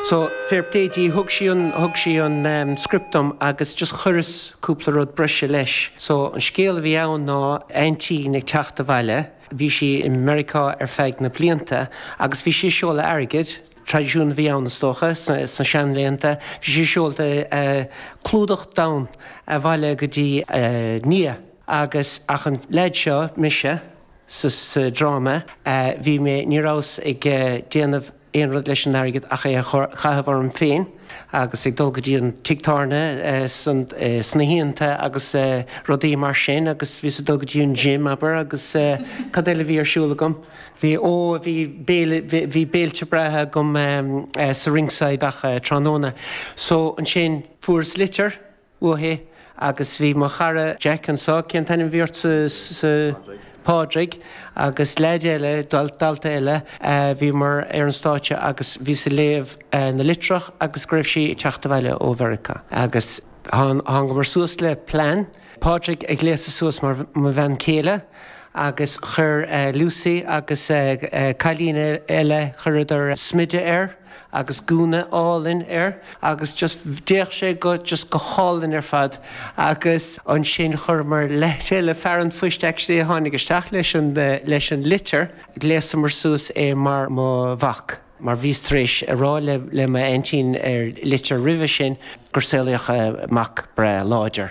So, fair play di, thug sí an, thug sí an ehm, script dom agus just chuireas cúpla rud breise leis. So, an scéal a bhí ann ná aintín ag teacht abhaile, bhí sí i Meiriceá ar feadh na blianta agus bhí sí ag seoladh airgid, traidisiún a bhí ann is dócha, sna, sna seanlaethanta, bhí sí ag seoladh eh, clúdach donn abhaile go dtí a nia agus, ach an leaid seo, mise, sa, sa dráma, eh, bhí mé, ní rabhas ag eh, déanamh, aon rud leis an airgead ach é a chaitheamh orm féin agus ag dul go dtí an tigh tábhairne sna hoícheanta agus rudaí mar sin agus bhíos ag dul go dtí an gym, abair, agus cad eile a bhí ar siúl agam? Bhí, ó, bhí béile, bhí béilte breátha agam sa Ringside gach tráthnóna. So, ansin, fuaireas litir. uaithi agus bhí mo chara Jack anseo, cén t-ainm a bhí ort sa, sa, Pádraig agus leaid eile, dalta eile, bhíomar ar an stáitse agus bhíos ag léamh na litreach agus go raibh sí ag teacht abhaile ó Mheiriceá agus thángamar suas le plean, Pádraig a ghléasadh suas mar mo bhean céile agus chuir Lucy agus cailín eile, chuireadar smideadh air. agus gúna álainn air agus just d'fhéach sé go just go hálainn ar fad agus ansin chuireamar le chéile fear an phoist actually a tháinig isteach leis an leis an litir ghléasamar suas é mar mo mhac mar bhíos tar éis a rá le le m'aintín ar litir roimhe sin gur saolaíodh mac breá láidir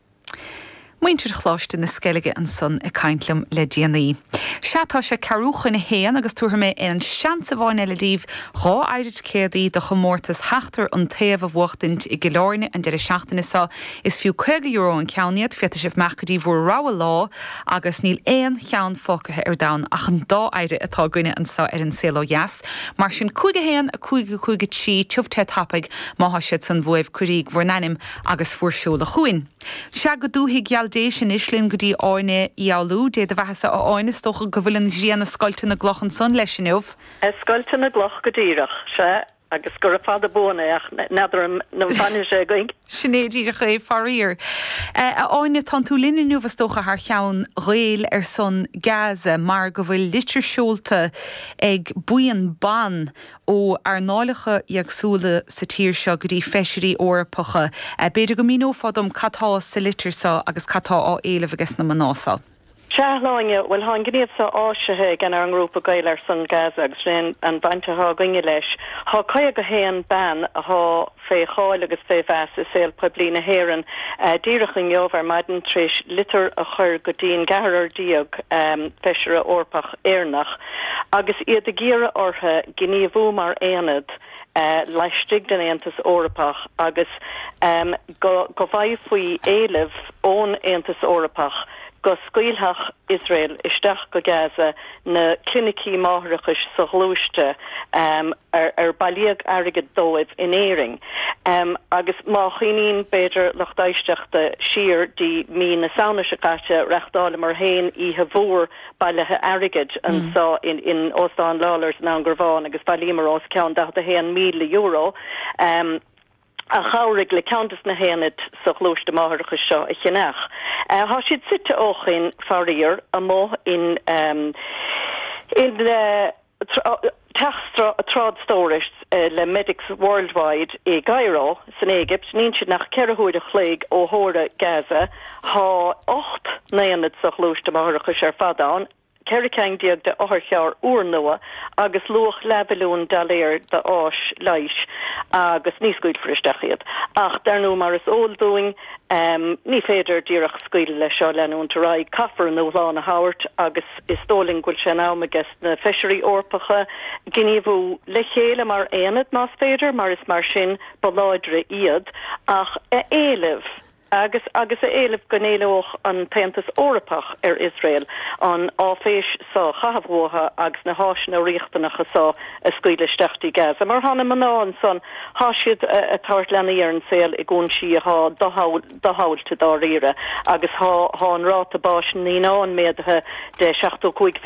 Muintir Choláiste na Sceilge ansan ag caint liom le déanaí. Sea, tá sé ceathrú chun a haon agus tabharfaidh mé aon seans amháin eile daoibh dhá fhéire ticéadaí do chomórtas Sheachtar an Taobh a bhuachtaint i gCill Áirne an deireadh seachtaine seo. Is fiú €50 an ceann iad, féadfaidh sibh imeacht go dtí bhur rogha lá agus níl aon cheann fágtha ar domhan ach an dá fhéire atá againne anso ar An Saol Ó Dheas. Mar sin, cúig a haon, a cúig, a cúig a trí, tiubh te tiubh tapaidh má thá siad san uaibh, cuiríg bhur n-ainm agus bhur seoladh chugainn. Sea, go dúthaigh gheal Déise anois linn go dtí Áine Uí Fhoghlú. Dé do bheathasa, a Áine, is dócha go bhfuil an ghrian a' scoilteadh na gcloch ansan leis inniu? A scoilteadh na gcloch go díreach, sea, agus gura fada buan é, ach n'fheadar an bhfanfaidh sé againn. Sin é díreach é, faraor. A Áine, tánn tú linn inniu is dócha thar cheann Gaeil ar son Gaza, mar go bhfuil litir seolta ag buíon ban ó earnálacha éagsúla sa tír seo go dtí feisirí Eorpacha. B'fhéidir go míneofá dom cad tá sa litir seo agus cad tá á éileamh aige sna mná seo. Sea, a Shláine, bhuel, tá an gníomh seo áisithe ag ár ngrúpa Gael ar son Gaza agus sin an bhaint atá againne leis. Tá 51 bean atá fé cháil agus fé mheas i saol poiblí na hÉireann díreach inniu ar maidin tar éis litir a chur go dtí an gceathrar déag Feisire Eorpach Éireannach agus iad ag iarraidh orthu gníomhú mar aonad laistigh den Aontas Eorpach agus go bhfaighfaí éileamh ón Aontas Eorpach go scaoilfeadh Iosrael isteach go Gaza na clinicí máithreachais so-ghluaiste ar bailíodh airgead dóibh in Éirinn agus má chuimhníonn, b'fhéidir, lucht éisteachta siar dtí mí na Samhna seo caite reachtáileamar féin oíche mhór bailithe airgid anseo in Óstán Lawlors i nDún Garbhán agus bhailíomar os cionn €41,000. a chabhraigh le ceann des na haonaid so-ghluaiste máithreachais seo a cheannach. Thá siad suite ó shoin, faraor, amuigh in i dteach trádstórais le Medics Worldwide i gCaireo, san Éigipt, níl siad nach ceithre huaire a chloig ó theora Gaza. Thá ocht n-aonad so-ghluaiste máithreachais ar fad ann. 14 ceann d'otharchairr úrnua agus luach leathmhilliún dollar de fhearas leighis agus ní scaoilfear isteach iad. Ach dar ndóigh mar is eol dúinn ní féidir díreach scaoileadh leis seo, leanúint ar aghaidh. Caithfear a ndúshlán a thabhairt agus is dóigh linn go bhfuil sé in am aiges na feisirí Eorpacha gníomhú, le chéile mar aonad más féidir mar is mar sin ba láidre iad, ach a éileamh. Agus agus a éileamh go n-éileodh an tAontas Eorpach ar Iosrael an áiféis so a chaitheamh uathu agus na háiseanna riachtanacha so a scaoileadh isteach dtí Gaza. Mar thá na mná ansan, thá siad a' tabhairt leanaí ar an saol i gcúinsí athá doshamhailte dáiríre agus thá an ráta báis na naíonán méadaithe de 75